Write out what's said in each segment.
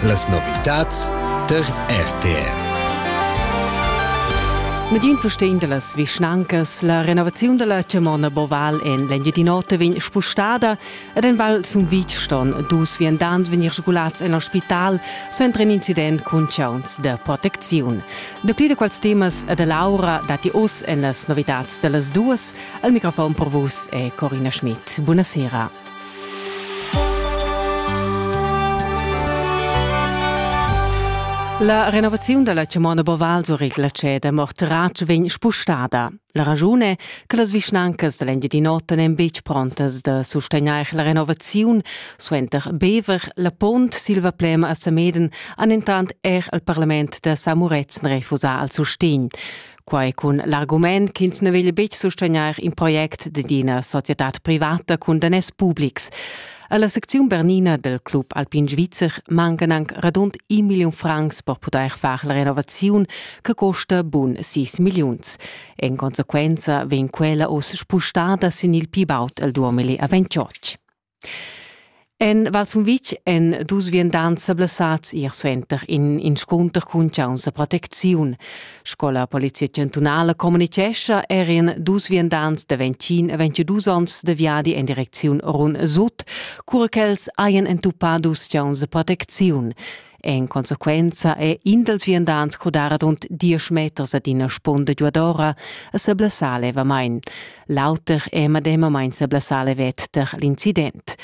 Las novitads tar RTR. Medin sustegn da las vischnancas. La renovaziun da la chamona Boval en l'Engiadin'Ota vegn spustada ed en Val Sumvitg ston dus viandants vegnir sgulats en l'ospital suenter in incident cun chauns da protecziun. Dapli da quels temas e da Laura datti oz en las novitads da las duas. Al microfon per vus è Corina Schmidt. Buonasera. La renovaziun dalla chamona Boval Surigla ceda mo Tratsch vegn spustada. La ragiun è che las vischnancas dall'Engiadin'Ota n'en betg prontas da sustegnair la renovaziun. Suenter Bever, la Pont, Silvaplem a Sameden han entant er il parlament da Samuretzen refusà al sustegn. Quai cun l'argument ch'ins na veglia betg sustegnair in project d'ina societad privata cun daners publics. Alla secziun bernina del Club Alpin Svizzer mancan anc radund un million francs per poter far la renovaziun che costa bun 6 milliuns. En conseguenza vegn quella oz spustada sin il pi baud el 2028. En Val Sumvitg èn dus viandants sa blessads ier suenter in inscunter cun chauns da protecziun. Sco la polizia chantunala communitgescha eran dus viandants da 21 e 22 onns da viadi en direcziun Run Sut, cura ch'els hajan entupà dus chauns da protecziun. En consequenza è in dals viandants crudar adunt diesch meters ad ina spunda giuadora e se blessà levamain. L'auter è medemamain se blessà levet der l'incident.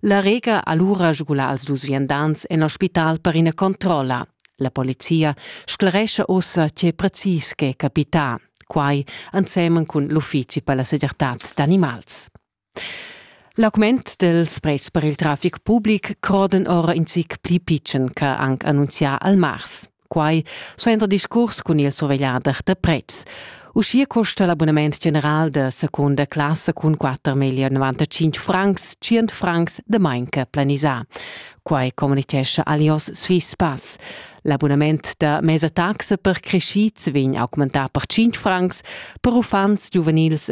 La Rega allura sgula als dus viandants en ospital per ina controlla. La polizia scleresce ossa che precis che capità, quai ensemen cun l'uffizi per la segirtad d'animals. L'augment dels prezs per il trafic public croden ora in zic pli pitschen che anc annunzià al mars. Quai suenter discurs cun il survegliader da prezs. Uschia costa l'abonament general da seconda classe cun 4 million 95 francs 100 francs de manca planisà. Quai communicescha Alios Swiss Pass. L'abonament da mesa taxa per crescids vegn augmentà per 5 francs per uffants giuvenils e